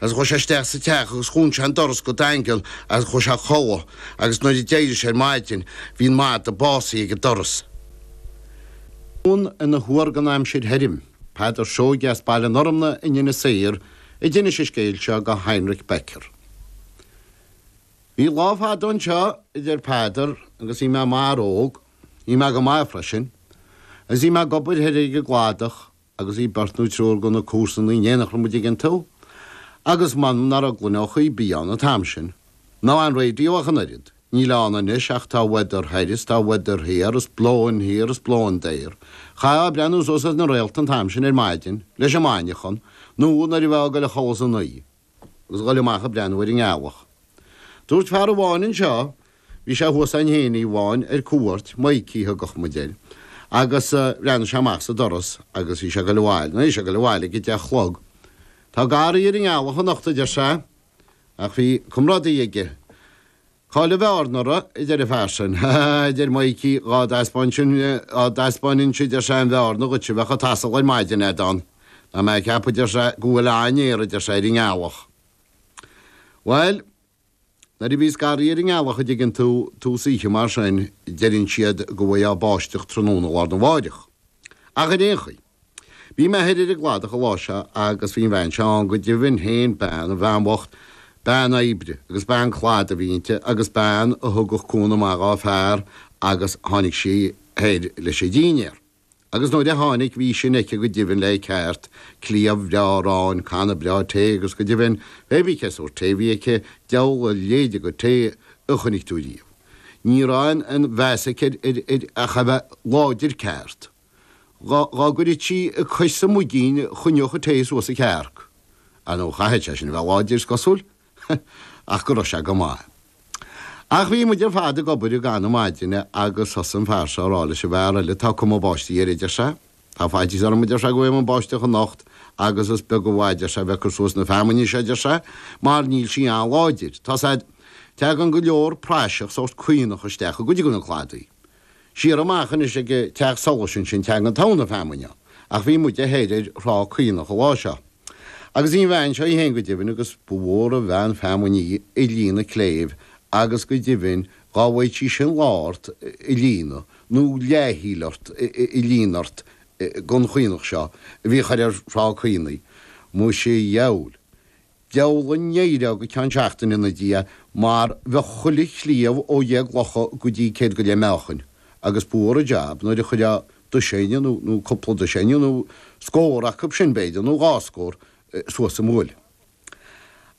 Agus chuaidh sé isteach sa teach agus dhún sé an doras go daingean agus chuaidh sé a chodhladh agus nuair a d'éirigh sé ar maidin bhí an madadh básaithe ag an doras. Eoghan ina Thuar don Aimsir Thirim, Peadar Seoige as Baile an Fhormna in Inis Oírr a d'inis an scéal seo go Heinrich Becker. Bhí lá fada anseo, a deir Peadar, agus bhí mé i m'fhear óg. Bhí mé go maith freisin. Agus bhí mé ag obair thoir ag an gcladach. agus bhí beirt nó triúr de na comharsanaí in éineacht muid ag an taobh, agus m'anam ná raibh gloineacha ar bith ann an t-am sin. Ná aon raidió ach an oiread. Níl ann anois ach tá weather thoir is tá weather thiar is blowing here is blowing there. Chaithfeá breathnú suas ar na réalta an t-am sin ar maidin, leis an maidneachan, nó nuair a bheifeá ag goil a chodladh san oíche. agus ghoil amach ag breathnú ar an ngealach. Dúirt fear amháin anseo, bhí sé thuas ann féin oíche amháin ar cuairt, Mikey a thugadh muid air, agus bhreathnaigh sé amach sa doras agus bhí sé ag goil abhaile, nó bhí sé ag goil abhaile ag a deich a chlog. Tá garraí ar an ngealach anocht, a deir sé, ach bhí comrádaí aige. Cá'il a bheárna uirthi? a deir a fear sin. Ha ha ha, a deir Maidhcí, dhá dtaispeáininnse, a deir sé, an bheárna dhuit bheadh a' t-asal ar maidin agat ann, tá mé a' ceapadh, a deir sé, go bhfuil an-fhéar, a deir sé, ar an ngealach. Bhuel, nuair a bhíos garraí ar an ngealach a' dtuigeann tú, tús oíche mar sin, deireann siad go bhfuigheá báisteach tráthnóna lá arna mháireach. Ach ar aon chaoi. Bhí mé thoir ar an gcladach an lá seo agus bhí an bhean seo ann go deimhin féin, bean, an bhean bhocht, bean oibre agus bean cladaigh a bhí inti agus bean a thugadh cúnamh maith dhá fear agus tháinig sí thoir leis an dínnéar agus nuair a tháinig bhí sin aici go deimhin le ceart, cliabh bhreá aráin, canna breá tae agus go deimhin, pé bí cén sórt tae a bhí aici, deabhal a leithéide go tae a chonaic tú riamh. Ní raibh aon mheas aici air ach é a bheith láidir ceart. Dhá gcuirfeadh sí a cois sa muigín choinneodh a tae suas a cearc. Ah no, chaithfeadh sé sin a bheith láidir, is cosúil, ach go raibh sé go maith. Ach bhí muid ar fad ag obair i gcaitheamh na maidine agus thosaigh an fear seo a rá leis an bhfear eile, tá cuma báistí air, a deir sé. Tá faitíos orm, a deir sé, go bhfaighidh muid báisteach anocht agus is beag an mhaith, a deir sé, a bheith ag cur suas na feamainne seo, a deir sé, mar níl sí an-láidir. Tá's agat, teagann go leor praiseach, sórt caonach, isteach i gcuid de na cladaí. Siar amach anois ag teach solais ansin teagann togha na feamainne, ach bhí muide thoir ar thrá Caonach an lá seo. Agus bhí an bhean seo í fhéin go deimhin, agus ba mhór an bhean feamainne í ag líonadh cléibh, agus go deimhin dhá mbeadh sí sin lá ort ag líonadh, nó leath-thaoille ort ag líonadh ort gon chaonach seo a bhí thoir ar thrá Caonaigh. Muise dheabhail! Bheulaigh ndeireadh go ceann seachtaine ina diaidh mar bheadh chuile chliabh ó dheich gclocha go dtí céad go leith meáchain agus ba mhór an jab nuair a chuireadh doiséine nó cúpla doiséine nó scór acub sin, b'fhéidir, nó dhá scór suas a mbuaile.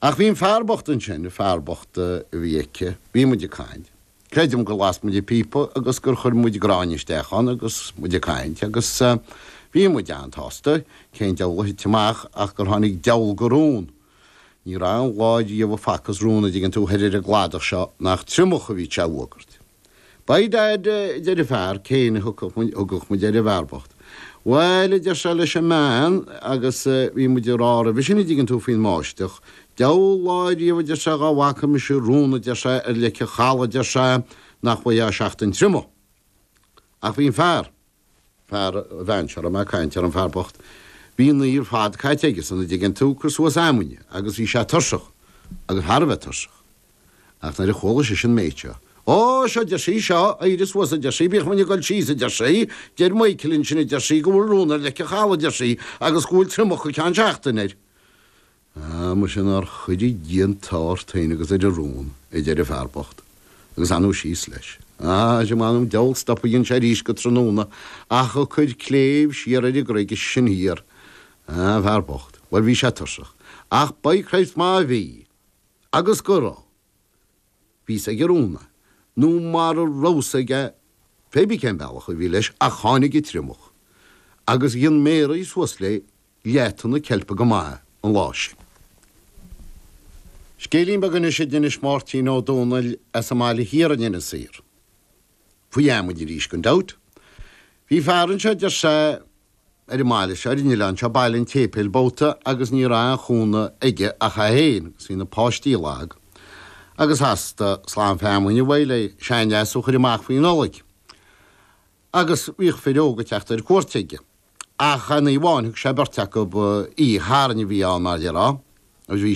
Ach bhí an fear bocht ansin, fear bocht a bhí aici, bhí muid ag caint. Creidim gur las muid an píopa agus gur chuir muid gráinne isteach ann agus muid ag caint agus bhí muid an-tsásta cén deabhal a thit amach ach gur tháinig deabhal go rón. Ní raibh an lá riamh a facthas rón a dtuigeann tú thoir ar an gcladach seo nach triomach a bhí sé a fhuagairt. By dad, a deir an fear céanna a dtugadh muid air an fear bocht. Bhail, a deir sé leis an mbean agus bhí muid ag rá roimhe sin a dtuigeann tú faoin mbáisteach, Deabhal lá ariamh, a deir sé, dhá bhfaca mise rón, a deir sé, ar leic an chaladh, a deir sé, nach bhfaightheá seachtain triomach. Ach bhí an fear, fear an bhean seo a raibh mé ag caint air, an fear bocht, bhí an oíche ar fad caite aigesan, a' dtuigeann tú, cur suas feamainne, agus bhí sé tuirseach, agus thar a bheith tuirseach. Ach nuair a chuala sise an méid seo. Ó, seo, a deir sí, seo, éirigh suas, a deir sí, bíodh muid ag dul síos, a deir sí, deir Maidhcilín ansin, a deir sí, go bhfuil rón ar leic an chaladh, a deir sí, agus go bhfuil triomach go ceann seachtaine air. Ah, muise, nár chuire Dia an t-ádh ort fhéin agus ar do rón, a deir an fear bocht, agus anonn síos leis. Ah, sea, m'anam diabhal, stop a rinne sé aríst go tráthnóna, ach ag cur cléibh siar ar an gcreig sin thiar. An fear bocht, bhuel, bhí sé tursach, ach by Christ má bhí, agus go raibh! bhí fhios ag an rón é, nó mara raibh fhios aige, pé ar bith cén bealach a bhí leis, ach tháinig an triomach, agus rinne Mary suas le leath-thonna ceilpe go maith an lá sin. Scéilín beag anois a d'inis Máirtín Ó Dónaill as an mbaile thiar in Inis Oírr faoi fheamainn arís, gan dabht. Bhí fear anseo a deir sé ar an mbaile seo, ar an oileán seo, Baile an tSéipéil Boghta agus ní raibh aon chúnamh aige ach é féin agus bhí na páistí lag agus theastaigh slám feamainn uaidh le seanleas a chur amach faoi Nollaig agus bhíodh fir óga ag teacht ar cuairt aige ach aon oíche amháin, thug sé beirt acu í, a charn a bhí ann, mar dhera, agus bhí.